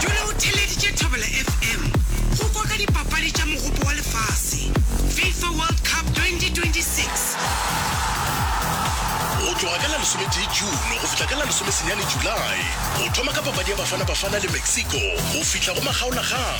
Jule o theleditše Thobela FM go kwa ka dipapadi tša Mogopo wa Lefase, Fifa World Cup 2026. Go tloga ka la lesometee June go fihla ka la lesomesenyane July, o thoma ka papadi ya Bafana Bafana le Mexico go fihla go makgaolakgang.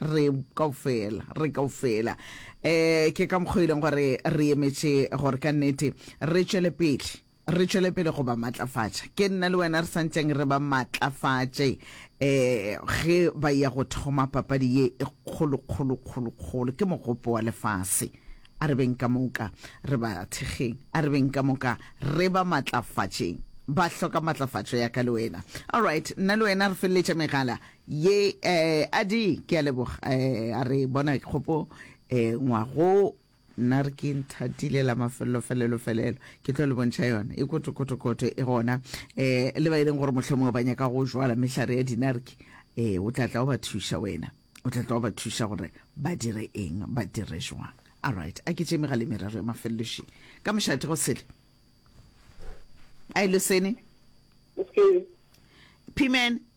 Re kaofela, re kaofela. E, ke ka mokgwa e leng gore re emetše gore ka nnete re tšwele pele, re tšwele pele go ba matlafatša. Ke nna le wena re sa ntleng re ba matlafatše e, ge ba ya go thoma papadi ye e kgolo, kgolo, kgolo, kgolo. Ke mogopo wa lefase. A re beng ka moka re ba thekgeng, a re beng ka moka re ba matlafatšeng. Ba hloka matlafatšo ya ka le wena. Alright, nna le wena re feleletša megala. ye eh, a di ke a leboga eh, a re bona kgopo eh, ngwago nna re ke nthatile la mafelelo felelo felelo ke tlo le bontšha yona e kotokotokoto e gona eh, le ba e leng gore mohlomongwe ba nyaka go jwala mehlare ya dinarki eh, o tla tla o ba thuša wena o tla tla o ba thuša gore ba dire eng ba dire jwang all right a ke tšeme ga le merero ya mafeleloši ka mošate go sele a e losene Okay. phimene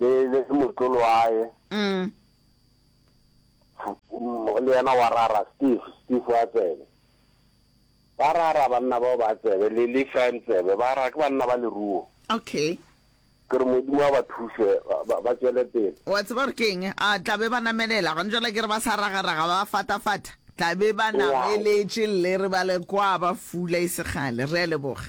le le motlolo wa hae mm. le yena wa rara steve steve wa tsebe ba rara banna bao ba tsebe le le fan tsebe ba rara ke banna ba leruo okay ke re modimo wa ba thuse ba tswele pele wa tseba gore ke eng a tla be ba namelela gone jala ke re ba sa ragaraga ba fatafata tla be ba nameletše lle re ba le kwa ba fula e segale re a leboga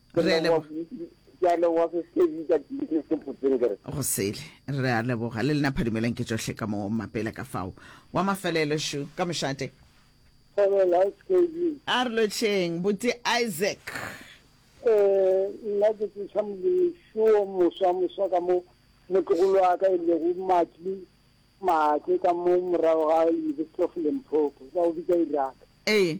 Re a leboga. Ke a leboga se se bitsa ke se potseng ke re. Go sele. Re a leboga. Le lena phadimelang ke tšohle ka mo mapele ka fao. Wa mafelelo shu ka mošate. Dumelags KB. A re lotšheng, Buti Isaac. Ee, nna ke tseša Molemi shu o moswa moswa ka mo motlogolo wa ka e lego Matli Maake ka mo morago ga University of Limpopo, ba o bitsa Iraq. Ee.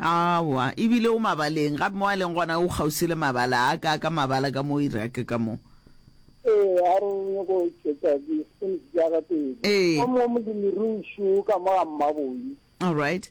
Aowa, e bile o mabaleng, gape mo a leng gona o kgauswi le mabala a ka, ka mabala ka mo Iraq ka mo. Ee. Alright.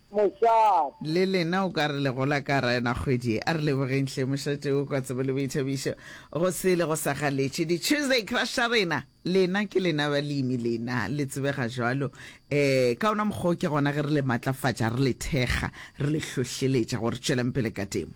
Mošate. Le lena o ka re le gola ka Raena kgwedi e. A re lebogeng hle Mošate o kwa tsebo le boithabišo go se le go sa galetše di Tuesday crush tša rena. Lena ke lena balemi lena le tsebega jwalo eh ka ona mokgwa o ke gona ge re le matlafatša re le thekga re le hlohleletša gore tšwelang pele ka temo.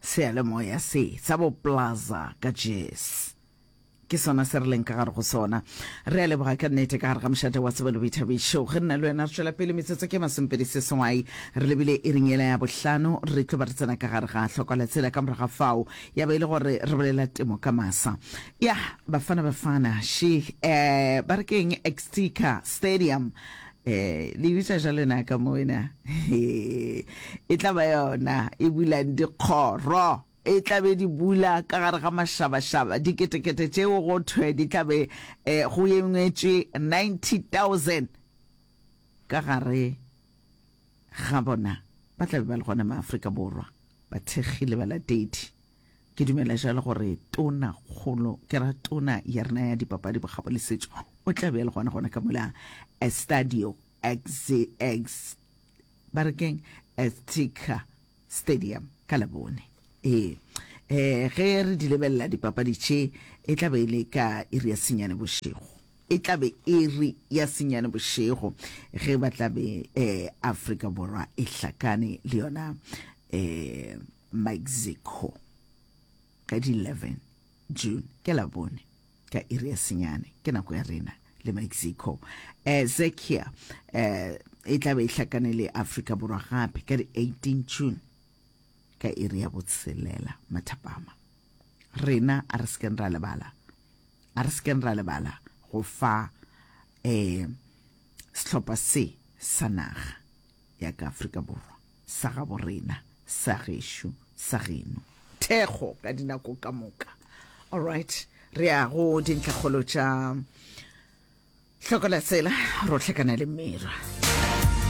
Seyalemoya se, sa bo Plaza ka Jess. Ke sona se re leng ka gare go sona. Re a leboga ka nnete ka gare ga mošate wa Sebele Boithabišo. Ge nna le wena re tšwela pele metsotso ke masomepedi seswai, re lebile iring yela ya bohlano, re tlo ba re tsena ka gare ga hloko la tsela. Ka morago ga fao ya ba e le gore re bolela temo ka masa. Yah, Bafana Bafana, she, eh, ba re ke eng, Exeter Stadium. Ee, le bitsa jalo na ka mona. e tla ba yona e bulang dikgoro e tla be di bula ka gare ga mašabašaba diketekete tšeo go thwe di tla be eh, go engwetšwe 90000 ka gare ga bona ba tla be ba le gona maaforika borwa bathekgi le balatedi Ke dumela jalo gore tona kgolo ke ra tona ya rena ya dipapadi bokgabo le setšo o tla be le gona gona ka mola Estadio XZX ba re keng Azteca Stadium ka labone ee eh ge re di lebelela dipapadi tše e tla be e le ka iri ya senyane bošego e tla be e re ya senyane bošego ge ba tla be eh Afrika Borwa e hlakane le yona eh Mexico ka di 11 June ke la bone ka iri ya senyane ke nako ya rena le Mexico eh Zekia eh e tla be e hlakane le Africa Borwa gape ka di 18 June ka iri ya botshelela mathapama rena a re sekeng ra lebala a re sekeng ra lebala go fa eh sehlopha se sa naga ya ka Afrika Borwa, sa gabo rena, sa gešo, sa geno. Thekgo ka dinako ka moka. All right, re ya go dintlhakgolo tša hlokola tsela, rotlhekana le mera.